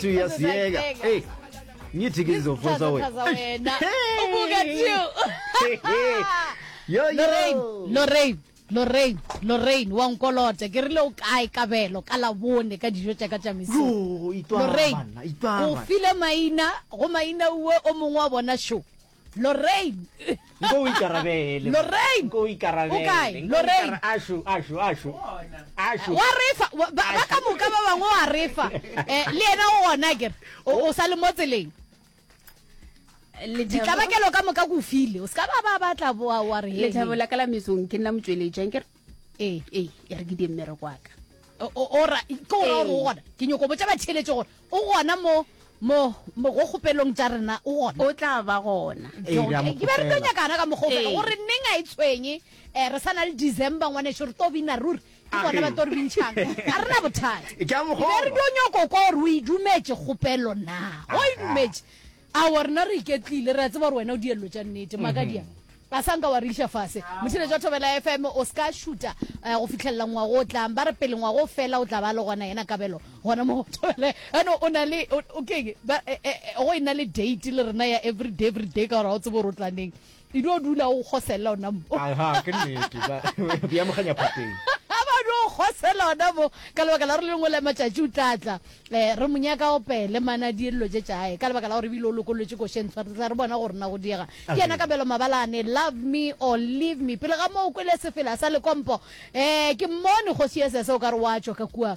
two years Sasa yeka yeka. hey ngithi ngizofosa Sasa wena wena. Ubuka too. yo lorraine yo lorraine lorraine lorraine wa nkolota ke rile o kae kabelo ka labone ka dijo tša ka tša mesong yo itwa lorraine bana itwa o bana file maina go maina uwe o mongwe wa bona show Lorraine. Nko o ikarabele. Lorraine. Nko o ikarabele. O kae? Lorraine. Ashu, ashu, ashu. Ashu. Wa refa ba ka moka ba bangwe wa refa. Eh le ena o ona ke o sa le mo tseleng. Ditlabakelo ka moka go file. O ska ba ba batla wa wa re. Le thabela kala mesong ke nna motsweletšang ke ee ee e re ke di mmere kwaka ora ke ora gore o gona ke nyoko botsa batšheletše gore o gona mo mo mo go kgopelong tša rena o gona o tla ba gona ke ba re tlo nyakana ka mokgopelo gore neng a e tshwenye um re sa na le december ngwaneso re to bina ruri ke bona ba to re bintšhang ga re na bothata ke re tlo nyoko ko gore o e dumetse kgopelo na o e dumetse Aowa, rena re iketlile, re a tseba gore wena o diello tša nnete. Makadia, a sa nka wa re iša fase. Motšhine tša Thobela FM, o ska šuta eh, go fitlhelela ngwago o tlang. Ba re pele ngwago o fela o tla ba le gona yena kabelo gona mo Thobela. Ano o na le o- o keng? Ba- eh, eh, eh, go e na le date le rena ya everyday everyday ka gore ga o tsebe gore o tla neng. e dio dula o kgosella ona mo aha ke nnete ba bi amoganya phateng ba dio kgosella ona mo ka lebaka la re lengwe la matšatši o tla tla eh re monyaka o pele mana diello tše tša hae ka lebaka la gore bile o lokolletše košeng tshwarisa re bona gore na go diega ke yena ka belo mabalane love me or leave me pele ga moo kwele sefela sa lekompo eh ke mmone kgosi ye sese o ka re wa tšwa ka kua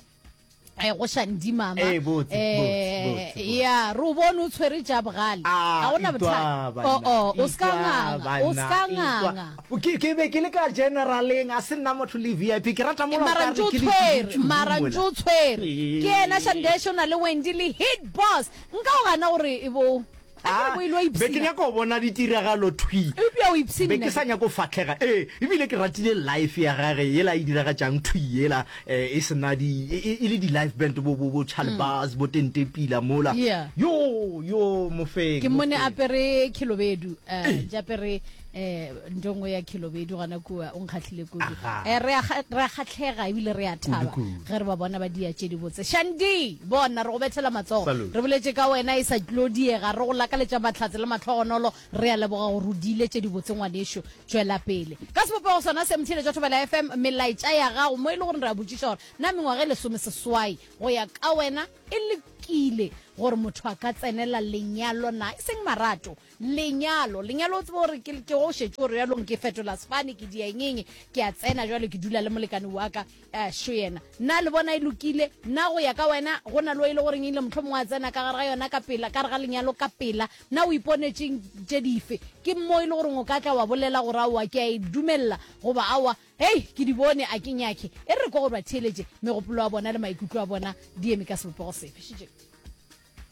eh go shandi mama eh botse eh ya ro bone o tshwere ja bogale ah, a ona botha o o o ska nganga o ska nganga ke ke be ke le ka generaleng a se nna motho le VIP ke rata mo mara ntse tshwere mara ntse tshwere ke ena shandesho na le Wendy le hit boss nka o gana gore e bo Akere bo e lo be ke ipshina. nyaka go bona ditiragalo thwi Eupša o ipshina. be ke sa nyako fatlhega ee ebile ke ratile life ya gage yela e diragatšang thwi yela eh, e sena di e, e- e le di-life band bo bo bo chalbas bo tentepila mola Mm. Yeah. yo yo mofeng ke mmone mofeng. apere khilobedu um japere eh nto nngwe ya khilobedu gana kua o nkgatlhile kudu eh re a kgatlhega ebile re a thaba ge re ba bona ba dia tše di botse shandi bona re go bethela matsogo re boletse ka wena e sa tlo diega re go lakaletša mahlatse le matlhogonolo re a leboga gore o diile tše di botse ngwanešu tšwela pele ka sebopego sona se mthile tša thobela fm melaetša ya gago mo e le gore re a botšiša gore na mengwaga e lesome seswai go ya ka wena e le lokile gore motho a ka tsenela lenyalo na e seng marato Lenyalo, lenyalo o tsebe gore ke ke go šetše gore bjalong ke fetola sefane ke dia engeng ke a tsena jwale ke dula le molekane wa ka eh, šo yena na le bona e lokile na go ya ka wena go na le o e le goreng ile motlho mongwe a tsena ka gare ga yona ka pela ka re ga lenyalo ka pela na o iponetseng tše dife ke mo e le goreng o ka tla wa bolela gore aowa ke a e dumelela goba aowa hei ke di bone a ke nyake e re ko gore ba theeletše megopolo wa bona le maikutlo a bona di eme ka sebopego sefe šitše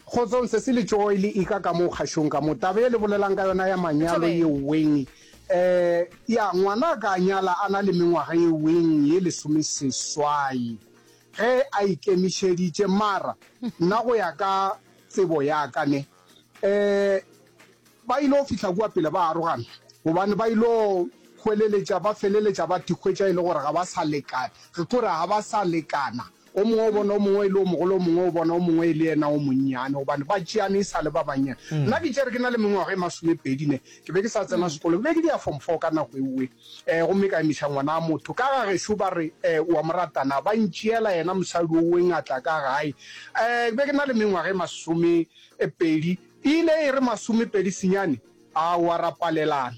Kgotsong, Sesi le Tšooi le ika ka mo kgašong ka mo. Taba e le bolelang ka yona ya manyalo ye weng? Eh, ya, ngwana a ka nyala a na le mengwaga ye weng ye lesomeseswai ge a ikemišeditše, mara nna go ya ka tsebo ya ka ne, eh, ba ilo fihla kua pele ba arogana gobane ba ilo hweleletša, ba feleletša ba thikgwetša e le gore ga ba sa lekana, re tlo re ga ba sa lekana. O mongwe o bona o mongwe e le o mogolo, o mongwe o bona o mongwe e le yena o monnyane, gobane ba tšeane e sa le ba bannyane. Nna ke tšere ke na le mengwaga e masomepedi ne, ke be ke sa tsena sekolo, ke be ke di ya form four ka nako eoe, um gomme ka emiša ngwana a motho ka ga gešo, ba re, um o a mo rata na? Ba ntšeela yena mosadi oeng a tla ka gae. Um ke be ke na le mengwaga e masomepedi, e ile e re masomepedi senyane, aowa ra palelana.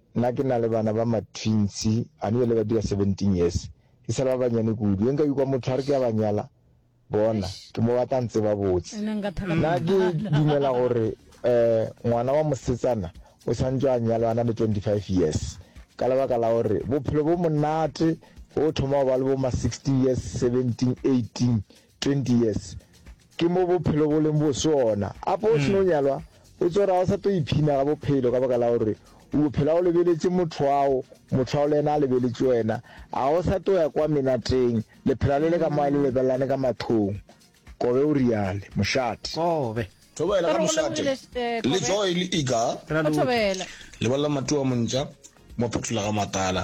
Nna ke na le bana ba ma-twins, gane bjale ba dira seventeen years. E sa le ba bannyane kudu. Ge nka ikwa motho a re ke a ba nyala, bona, ke mo ba tla ntseba botse. Nna ke dumela gore um ngwana wa mosetsana o santšwe a nyalwa a na le twenty-five years, ka lebaka la gore bophelo bo monate ge o thoma go ba le bo ma-sixteen years, seventeen, eighteen, 20 years ke mo bophelo bo leng bo sona apo o seno nyalwa o tsora o sa to iphina ga bophelo ka baka la gore o bophela o lebeletse motho ao motho ao le ena a lebeletse wena a o sa to ya kwa menateng le phela le le ka moa le lebelelane ka mathong kobe o riale mošate kobe thobela ka mošate le joy le iga thobela lebelela matu a montša mo phetola ga matala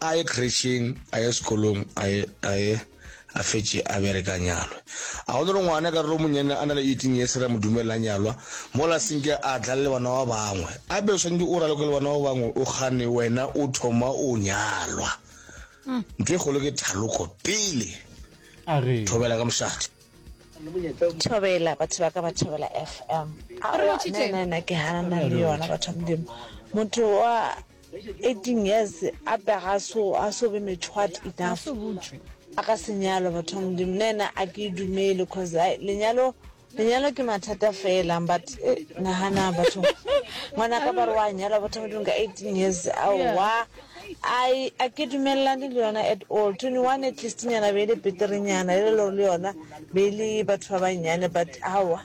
a ye kretšheng a ye sekolong a ye a ye a fetše a bereka nyalwe a go le re ngwana ka re monyane a na le eighteen years ra mo dumela nyalwa mola senke a tla le bana ba bangwe a be o swanetse o raloko le bana ba bangwe o gane wena o thoma o nyalwa mm. ntho e kgolo ke thaloko pele thobela ka mošate thobela batho ba ka ba thobela fm nna ke ganana le yona batho ba modimo motho wa 18 years a pega so a so be methwat enough a ka se nyalwa batho ba modimo nna ena a ke e dumele cause ai lenyalo lenyalo ke mathata fela but eh, nagana batho ngwana ka ba re wa nyalwa batho ba modimo ka 18 years aowa ai a ke dumelelane le yona at all 21 at least nyana be e le beterenyana e le lore le yona be e le batho ba bannyane but aowa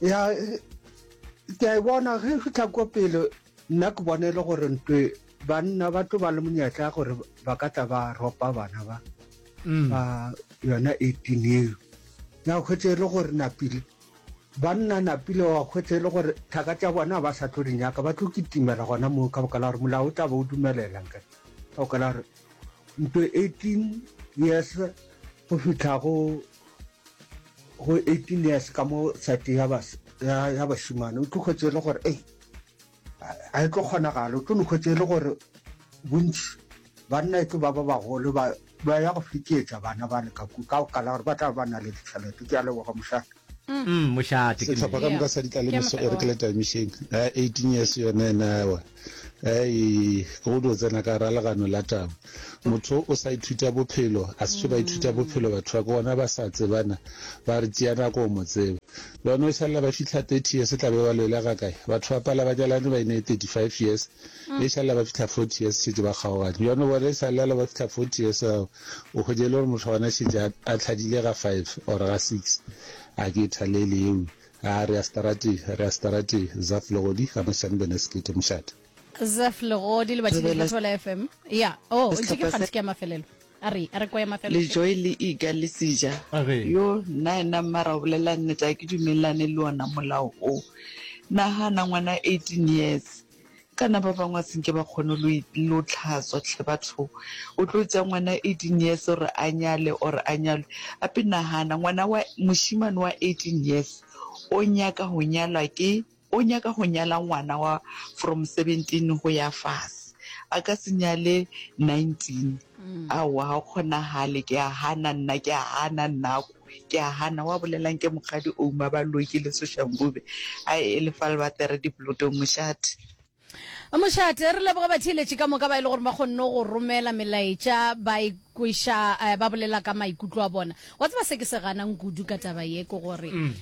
ya ke a e bona ge e fitlha ko pele nna ke bone e le gore ntwe banna ba tlo ba le monyetla gore ba ka tla ba ropa bana ba mm. ba yona eighteen eo ya kgwetse e le gore napile banna napile wa kgwetse e le gore thaka tša bona ba sa tlo di nyaka ba tlo kitimela gona moo ka bokala gore molao o tla ba o dumelelang ka bokala gore ntwe eighteen years go fitlha go go 18 years ka mo sati ya bašimane o tlo hwetse e le gore ei a e tlo kgonagala o tlo no hwetse e le gore bontši banna e tlo ba ba bagolo ba ya go fitietsa bana ba le ka ku ka go kala gore ba tla ba na le ditšhelete ke a leboga mošate mošate setlhopha ka moka sa ditla le meso e re ke le taimišeng 18 years yone nawa Ei, ke go dio tsena ka ra legano la taba. Motho o sa ithuta bophelo, a se ba ithuta bophelo batho ba ke bona ba sa tsebana, ba re tšea nako mo tseba. Le bona o šalla ba fihla 30 years tla be ba loela ga kae? Batho ba pala ba nyalane ba ine 35 years, e šalla ba fihla 40 years šetše ba kgaogane. Bjone bona e šalla le ba fihla 40 years ao o hwetše le gore motho gona šetše a tlhadile ga 5 or ga 6. A ke e thalele eo. A re a starati, a re a starati, Zaf Legodi, ga mošane bene sekete mošate. Zaf Legodi, Lebathi le Thotho la FM. Ya, o, o ntšhe ke kgantšhe ke ya mafelelo. A re, a re kwa ya mafelelo. Le Joy le Ika le Sija. A re. Yo, nnaena mmara o bolela nnete, ga ke dumelelane le ona molao o. Nagana ngwana 18 years. Kana ba bangwe a se nke ba kgone lo lo tlhatswa hle batho. O tlo tša ngwana eighteen years gore a nyale or a nyalwe. Gape nagana ngwana wa mošemane wa eighteen years o nyaka go nyalwa ke o nyaka go nyala ngwana wa from seventeen go ya fase. A ka se nyale nineteen aowa ga go kgonagale ke a gana nna ke a gana nna ko. Ke a hana, wa bolela nke mokgadi Ouma ba loki le Soshangube. Ai e le fa le batere diplotong mošate. Mošate, re leboga batheeletši ka moka ba e le gore ba kgonne go romela melaetša ba e kweša ba bolela ka maikutlo a bona. Wa tseba se ke se ganang kudu ka taba ye ke gore um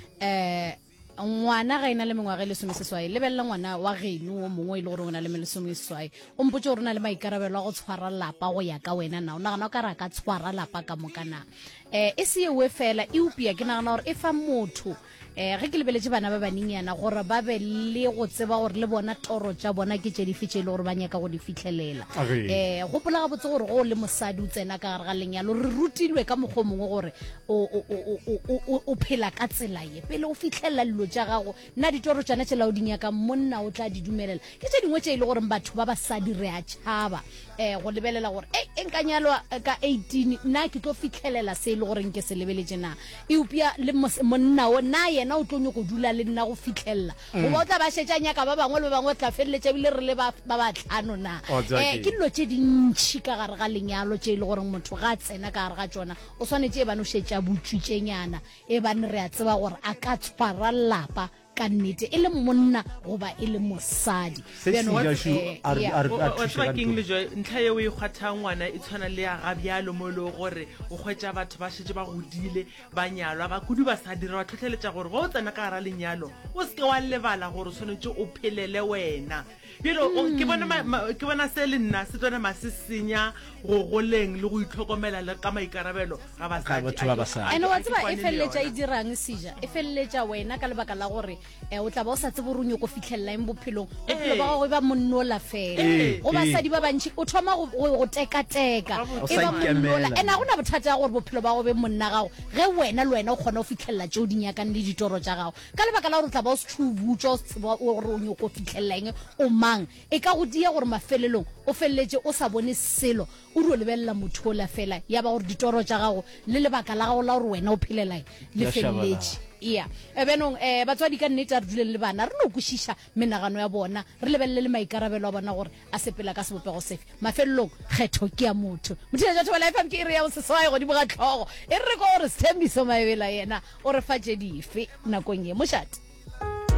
Ngwana ga e na le mengwaga e lesomeseswai, lebelela ngwana wa geno wo mongwe e le gore o na le melesomeseswai. O mpotse gore o na le maikarabelo a go tshwara lapa go ya ka wena na. O nagana o ka re a ka tshwara lapa ka moka na? Eh, e se ewe fela, eupia ke nagana gore e fa motho eh ge ke lebeletse bana ba banenyana gore ba be le go tseba gore le bona toro tša bona ke tše dife tše e le gore ba nyaka go di fitlhelela Agee. eh gopola gabotse gore go o le mosadi o tsena ka gare ga lenyalo re rutilwe ka mokgwa o mongwe gore o- o- o- o- o- o- o phela ka tsela Pele o fihlelela lilo tša gago, na ditoro tšana tšela o di nyakang monna o tla di dumelela? Ke tše dingwe tše e le goreng batho ba basadi re a tšhaba um go lebelela gore ei, e nka nyalwa ka eighteen, na ke tlo fihlelela se e le goreng ke se lebeletše na? Eupša le monna wo, na yena o tlo nyoko dula le nna go fihlelela goba o tla ba šetše a nyaka ba bangwe le ba bangwe, re tla feleletša ebile re le ba ba batlhano na? Wa tseba Um ke- ke dilo tše dintšhi ka gare ga lenyalo tše e le goreng motho ga a tsena ka gare ga tšona o swanetše e bane o šetše a butswitšenyana Ebane re a tseba gore a ka tshwara lapa ka nnete, e le monna goba e le mosadi. Se Bjano, sila šo eh, a re- yeah. a re- O- a o- o thuše tseba ka keng ntho. le joe ntlha yeo e kgwatha ngwana e tshwana le ya ga bjalo mo e lego gore o kgwetša batho ba šetse ba godile ba nyalwa ba kudu ba sa dira ba tlhotlheletša gore ge o tsena ka gara lenyalo o seke wa lebala gore o tshwanetse o phelele wena Bjalo o, ke bona ma, ma, ke bona se le nna se tlo nama se senya go goleng le go itlhokomela le ka maikarabelo ga Ga basadi. batho ba basadi. ene wa Ga ke tseba e kwane le feleletša e yona. dirang seja e feleletša wena ka lebaka la gore um o tla ba o sa tsebe gore o nyoko fitlhelela eng bophelong bophelo ba Ee. gago e ba monnola fela Ee, go ee. basadi ba bantšhi o thoma go- go go tekateka O e sa ba monnola ikemela. ene ga go na bothata ya gore bophelo ba go be monna gago ge wena le wena o kgona go fitlhelela tšeo di nyakang le ditoro tša gago ka lebaka la gore o tla ba o se tšhubutšwa o se tseba gore o nyoko fitlhelela eng o mang e ka go dia gore mafelelong o feleletše o sa bone selo o di o lebelela motho ola fela ya ba gore ditoro tša gago le lebaka la gago la gore wena o phelelae le feleletše ea ebenong um eh, batswadi ka nnete a re duleng le bana re no kwešiša menagano ya bona, re lebelele le maikarabelo a bona gore a sepela ka sebopego sefe. Mafelelong, kgetho ke ya motho. Mothiša Jathoba le FM ke iri ya boseswai godimo ga tlhogo. E re re kwa gore Sthembiso Maebela yena o re fa tše dife nakong ye, mošate?